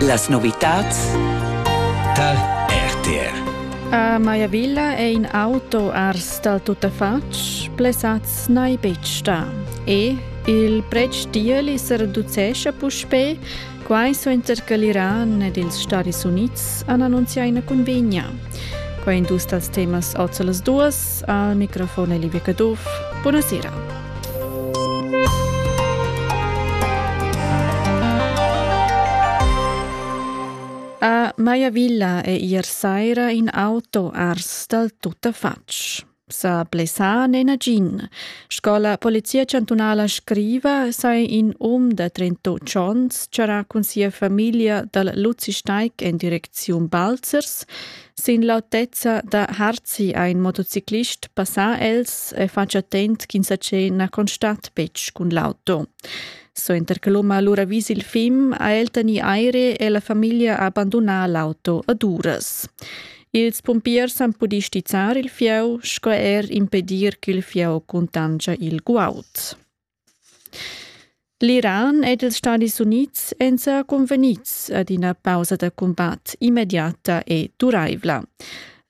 Las novitads tar RTR. A Maiavilla è in auto ars dal tuttafatg, plesats n'hai betg stà. E il pretsch tiel se reducescha puspè, quai suenter che l'Iran ed ils Stadis Unids han annunzià ina convegna. Quai è dus dals temas oz las duas. Al microfon è Livia Caduff. Buonasera. A Maiavilla è ier saira in auto ars dal tuttafatg. Sa blessà n'è nagin. Sco la Polizia chantunala scriva, sei in um da 38 onns charà cun sia famiglia dal Luzisteig en direcziun Balzers Sin l'autezza da Harzi ha in motociclist passà els e fatg attent ch'insatge na constat betg cun l'auto. Suenter che l'um ha lura vis il fim, ha el tegnì aire e la famiglia ha bandunà l'auto ad uras. Ils pumpiers han pudì stizzar il fieu sco er impedir ch'il fieu cuntanscha il guaud. L'Iran ed ils Stadis Unids èn sa cunvegnids ad ina pausa da cumbat immediata e duraivla.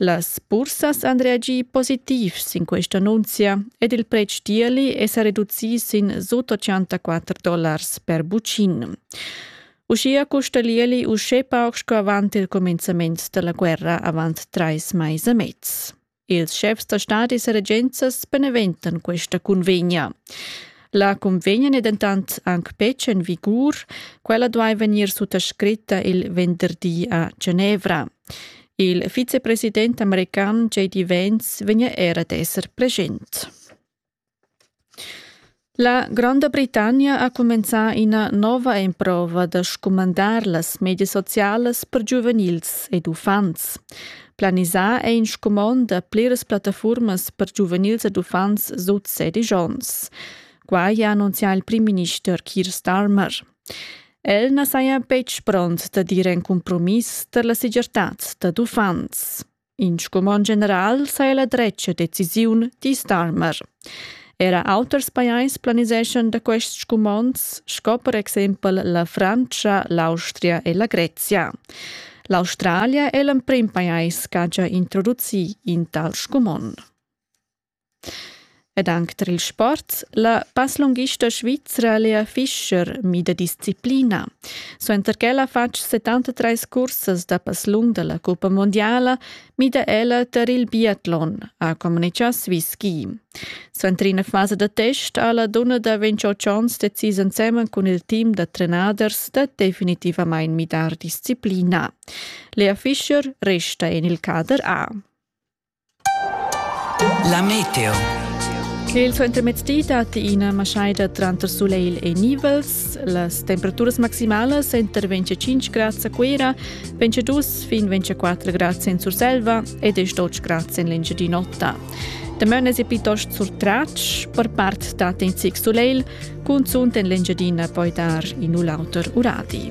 Las bursas han reagì positiv sin questa annunzia ed il pretsch d'ierli è sa reducì sin sut 84 dollars per bucin. Uschia custa l'ierli uschè pauc sco avant il cumenzament da la guerra avant trais mais e mez. Ils schefs da stadis e regenzas beneventan questa cunvegna. La cunvegna è dentant anc betg en vigur. Quella duai vegnir suttascritta il venderdi a Genevra. Il vicepresident american JD Vance vegnia era d'esser present. La Gronda Britannia ha cumenzà ina nova emprova da scumandar las medias socialas per giuvenils ed uffants. Planisà è in scumond da pliras plattafurmas per giuvenils ed uffants sut sedisch onns. Quai ha annunzià il primminister Keir Starmer. El na saja betg pront da dir in cumpromiss tar la segirtad dad uffants. In scumond general sa è la dretga decisiun, di Starmer. Era auters pajais planiseschan da quests scumonds, sco per exempel la Frantscha, l'Austria e la Grezia. L'Australia è l'emprim pajais ch'ha già introducì in tal scumond. Ed anc tar il sport. La passlunghista svizra Lea Fischer mida disciplina. Suenter ch'ella ha fatg 73 cursas da passlung da la cuppa mundiala, mida ella tar il biatlon, ha communitgà Swisski. Suenter ina fasa da test ha la dunna da 28 onns decis ensemen cun il team da trenaders da definitivamain midar disciplina. Lea Fischer resta en il cader A. La meteo. Il suentermezzdi datti ina maschaida tranter sulegl e nivels. Las temperaturas maximalasenter 25 grads a Cuira, 22 fin 24 grads en Surselva ed 12 grads en l'Engiadin'Ota. Damaun è piuttost surtratg, per part dat in zic sulegl, cunzunt en l'Engiadina poi dar in u l'auter uradi.